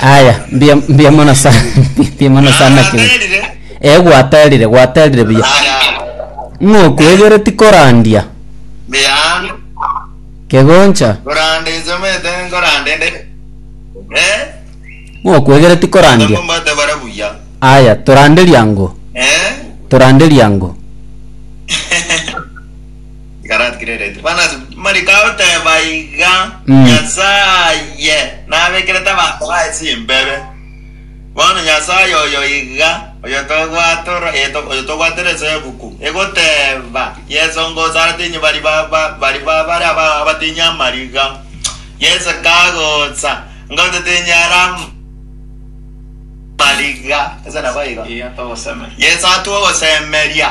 Aya, mbuya mbuya mono sana mbuya mono sana kegeni. Eh gwaterire gwaterire buya. Ng'okwegeti korandia kegoncha ng'okwegeti korandia. Aya toranderia ango toranderia ango. Ikaratigererete bana ase mariko ao teba iga, Mm. Nyasaye nabekerete abanto baye chimbebe. Bono Nyasaye oyo iga, oyo togwatora, eh, to- oyo togwatera eseguku, egoteba, Yeso ngosatinyi bari baba, bari babare aba- abatinyi amariga. Yeso kagosa, ngotitinyi ara am- mariga. Ase nabo igo. Yeso atwa ogosemeria.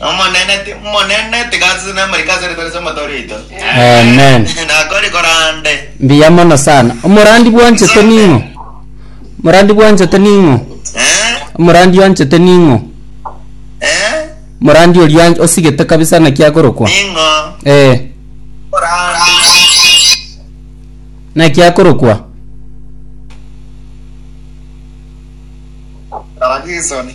Omonene ti- Omonene tigasase namariko ase ritari ri'omoto oito. Amen. Nakori korande. Mbuya mono sana. Omorandi bwanchete ning'o? Omorandi bwanchete ning'o? Eh? Omorandi oanchete ning'o? Eh? Omorandi oria an- osigete kabisa naki akorokwa? Ning'o? Eh, Korande. naki akorokwa? Abakristo ni.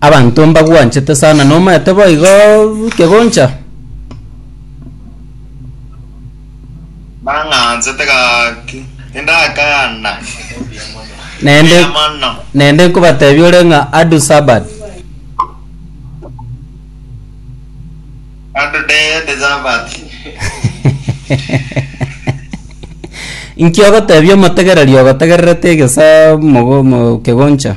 Abanto mbagwanchete sana, nomaete boigo kegoncha. Nang'ansete gaki, tindakana. Naende, Mbuya mono. naende nkobatebia ore ng'a adu Sabbath. Adu dede Sabati. Inki ogotebia omotegereri ogotegererete egesa mogo- mo- kegoncha?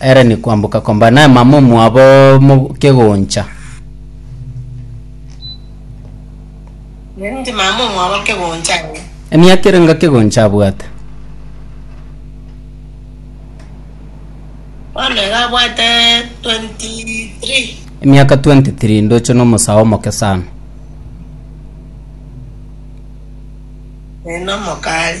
Ere ni kwamboka komba naema momwabo mo kegoncha. Ere ni timama momwabo kegoncha aye. Emiaka ere nga kegoncha abwate. Bono iga abwate 23. Emiaka 23 ndoche nomosae omoke sana. Ere nomokari.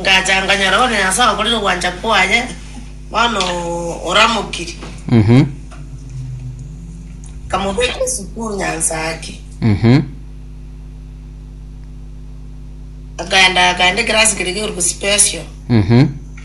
Ngacha nkanyora one Nyasae okorire ogwancha kwaye, bono oramokiri. Mhm. Nkamobeka esukuru Nyansaaki. Mhm. Akaenda akaenda ekerasi keria gekorwa special. Mhm.